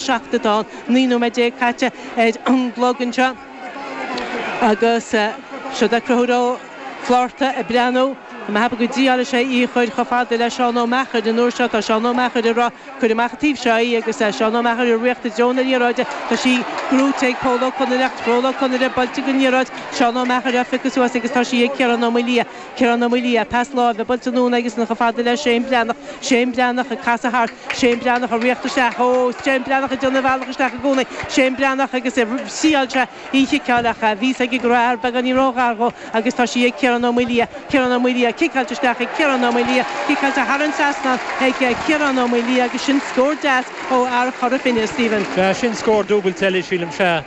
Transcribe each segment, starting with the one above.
seachtain tá naoi nóiméad déag caite ar an gclog anseo agus seod é Conchúr Ó Flátharta ag breathnú go mbeadh go dtí shíl sé í a chur chomh fada le Seán Ó Meachair an uair seo tá Seán Ó Meachair ag rá cuir amach an taobh seo í agus Seán Ó Meachair ag tíocht i dtreo na liathróide tá sí gnóite ag Pól Ó Conaire Pól Ó Conaire buailte aige an liathróid Seán Ó Meachair á phiocadh suas agus tá sí ag Ciarán Ó Maoildhia Ciarán Ó Maoildhia, pas láimhe, buailte anonn aigesan chomh fada le Shane Breathnach, Shane Breathnach ag casadh thart, Shane Breathnach ag tíocht isteach, oh, Shane Breathnach ag déanamh a bhealach isteach i gcónaí, Shane Breathnach agus shíl sé í a chiceáil ach bhí fhios aige go raibh fear beagáinín ró-ghar dhó agus tá sí ag Ciarán Ó Maoildhia, Ciarán Ó Maoildhia, ciceáilte isteach ag Ciarán Ó Maoildhia, ciceáilte thar an trasnán ag Ciarán Ó Maoildhia agus sin scór deas ó fhear Chora Finne, Stephen. Sea, sin scór dúbailte eile, sílim, sea,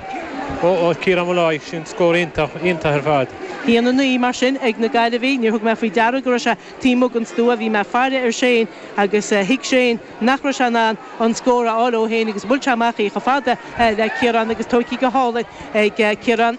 ó Chiarán Molloy, sin scór iontach, iontach ar fad. A haon a naoi, mar sin, ag na Gaillimhigh. Níor thug mé faoi deara go raibh sé taobh amuigh den stua. Bhí mé ag faire ar Shane agus thuig Shane nach raibh sé in ann an scór a fháil é féin agus bhuail sé amach í chomh fada le Ciarán agus tógtha go hálainn ag Ciarán.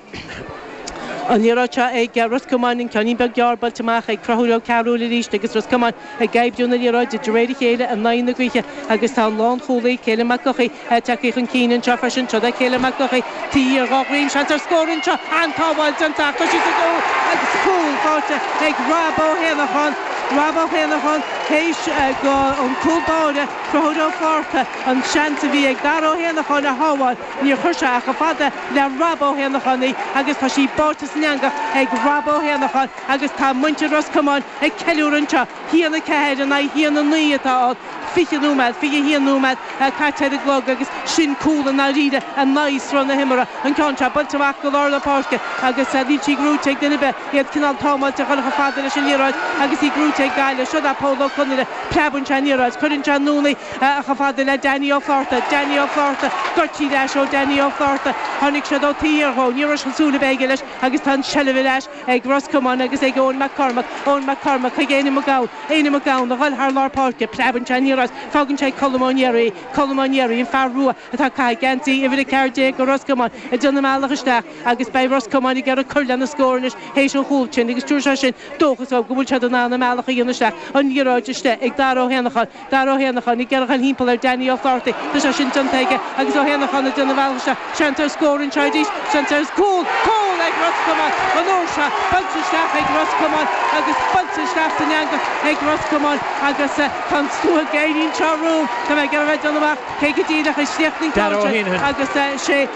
An liathróid seo ag Ros Comáin, an ceainnín beag gearr, buailte amach ag Conchúr Ó Cearúill arís agus Ros Comáin. ag oibriú na liathróide de réir a chéile in aghaidh na gaoithe agus tá an lánchúlaí, Caelim Mac Eochaidh, ag teacht chun cinn anseo freisin. Seod é Caelim Mac Eochaidh, taobh thiar dhá dhroim, seans ar scór anseo, an-tsábháil déanta ach tá siad ag dó agus cúl faighte ag Rob Ó hÉanacháin, Rob Ó hÉanacháin théis go an cúl báire, Conchúr Ó Flátharta, an seans a bhí ag Dara Ó hÉanacháin a shábháil, níor chuir sé ach chomh fada le Rob Ó hÉanacháin í agus tá sí báite san eangach ag Rob Ó hÉanacháin agus tá muintir Ros Comáin ag ceiliúradh anseo. A haon 4 in aghaidh a haon 9 atá ann, 20 nóiméad, 21 nóiméad caite ar an gclog agus sin cúl i ndáiríre in aghaidh sruth na himeartha. An ceann seo, buailte amach go lár na páirce agus níl sí gnóite ag duine ar bith, iad cineál támáilte a ghoil chomh fada leis an liathróid agus í gnóite ag Gaillimh. Seod é Pól Ó Conaire, preabann sé an liathróid, cuireann sé anonn í chomh fada le Danny Ó Flátharta, Danny Ó Flátharta, goidte ar ais ó Danny Ó Flátharta, tháinig siad ó taobh thiar dhó, ní raibh aon súil ar bith aige leis agus tá an tseilbh ar ais ag Ros Comáin agus ag Eoghan Mac Cormaic, Eoghan Mac Cormaic chuig Éanna Mac Gabhann, Éanna Mac Gabhann, a ghoil thar lár páirce, preabann sé aniar as, fágann sé ag Colm Ó Náraigh é, Colm Ó Náraigh, an fear rua atá ag caitheamh geansaí uimhir a ceathair déag go Ros Comáin, ag déanamh a mbealach isteach agus beidh Ros Comáin ag iarraidh cur lena scór anois théis an chúl sin agus tabharfaidh sé sin dóchas dhóibh go bhfuil siad in ann a mbealach a dhéanamh isteach, an liathróid istigh ag Dara Ó hÉanacháin. Dara Ó hÉanacháin ag iarraidh a ghoil thimpeall ar Danny Ó Flátharta. Tá sé sin déanta aige agus Ó hÉanacháin ag déanamh a bhealach isteach. Seans ar scór anseo arís, seans ar chúl, cúl ag Ros Comáin an uair seo. Buailte isteach ag Ros Comáin agus buailte isteach san eangach ag Ros Comáin agus tá an scáth gréine anseo romham, tá mé ag iarraidh a bheith ag déanamh amach cé go díreach a chríochnaigh an ceann sin agus sé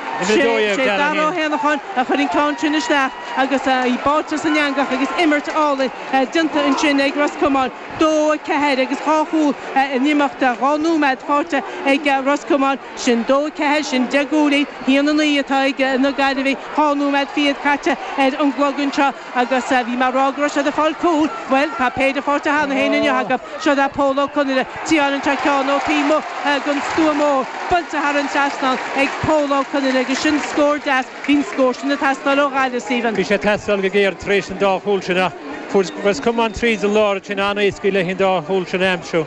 Dara Ó hÉanacháin a chuir an ceann sin isteach agus í báite san eangach agus imirt álainn déanta ansin ag Ros Comáin. dó, a ceathair agus dhá chúl in imeacht dhá nóiméad fáighte ag Ros Comáin. Sin dó, a ceathair, sin deich gcúilín, a haon, a naoi atá ag na Gaillimhigh. Dhá nóiméad fichead caite ar an gclog anseo agus bhí mé a rá go raibh siad ag fáil cúl. Bhuel, tá péire fáighte cheana féin inniu acu. Siod é Pól Ó Conaire tiomáineann sé ceann ó taobh amuigh den stua mór. Buailte thar an trasnán ag Pól Ó Conaire agus sin scór deas. Bhí an scór sin ag teastáil ó Ghaillimh, Stephen. Bhí sé ag teastáil go géar tar éis an dá chúl sin ach fuair Ros Comáin tríd an lár ansin an-éascaí leis an dá chúl sin a aimsiú.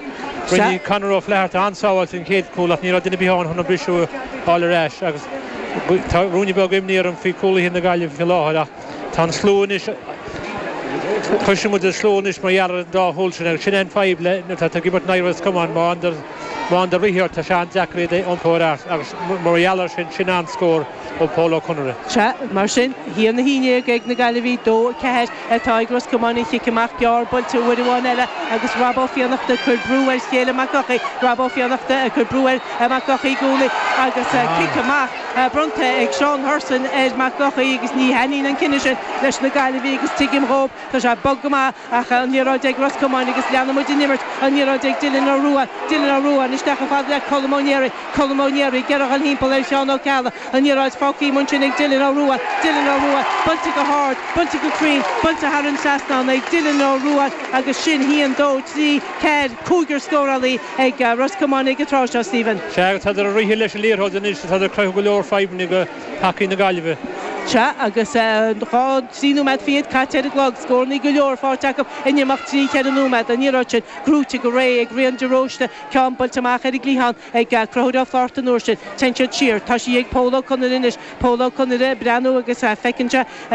Rinne Conor Ó Flatharta an-sábháil don chéad chúl ach ní raibh duine ar bith ann chun an briseadh a fháil ar ais agus tá ruainne beag imní orm faoi chúlaithe na Gaillimhe faoi láthair ach tá an slua anois cloisfidh muid an slua anois mar gheall ar an dá chúl sin agus sin é an fadhb le nuair atá tú ag imirt in aghaidh Ros Comáin má fhaigheanndar rith ort tá sé an-deacair iad a iompó ar ais agus mar gheall air sin sin an-scór ó Pól Ó Conaire. Sea, mar sin, a haon, a haon déag ag na Gaillimhigh, 2, 4, atá ag Ros Comáin an cic amach gearr buailte uair amháin eile agus Rob Ó Fiannachta ag cur brú ar Chaelim Mac Eochaidh, Rob Ó Fiannachta ag cur brú ar Mhac Eochaidh i gcónaí agus cic amach bronnta ag Seán Hurson ar Mhac Eochaidh agus ní thaitníonn an cinneadh sin leis na Gaillimhigh agus tuigim dhóibh Tá sé bog go maith, ach an liathróid ag Ros Comáin agus leanann muid an imirt an liathróid ag Dylan Ó Ruaidh, Dylan Ó Ruaidh, isteach ar fad le Colm Ó Néaraigh, Colm Ó Néaraigh, ag iarraidh a dhul thimpeall ar Sheán Ó Ceallaigh, an liathróid fágthaí amuigh ansin ag Dylan Ó Ruaidh, Dylan Ó Ruaidh, buailte go hard, buailte go cruinn, buailte thar an trasnán ag Dylan Ó Ruaidh agus sin a haon, dó, trí, ceathair, cúigear scórálaí ag Ros Comáin ag an tráth seo, Stephen. Sea, agus tádar ag rith leis an liathróid anois, tádar ag cruthú go leor fadhbanna do thacaí na Gaillimhe. Sea, agus dhá. Trí nóiméad fichead caite ar an gclog, scórannaí go leor faighte acu in imeacht trí, cheithre nóiméad. An liathróid sin gnóite go réidh ag Rian de Róiste, ceann buailte amach ar an gcliathán ag Conchúr Ó Flatharta an uair sin, téann siad siar. Tá sí ag Pól Ó Conaire anois. Pól Ó Conaire ag breathnú agus feiceann sé.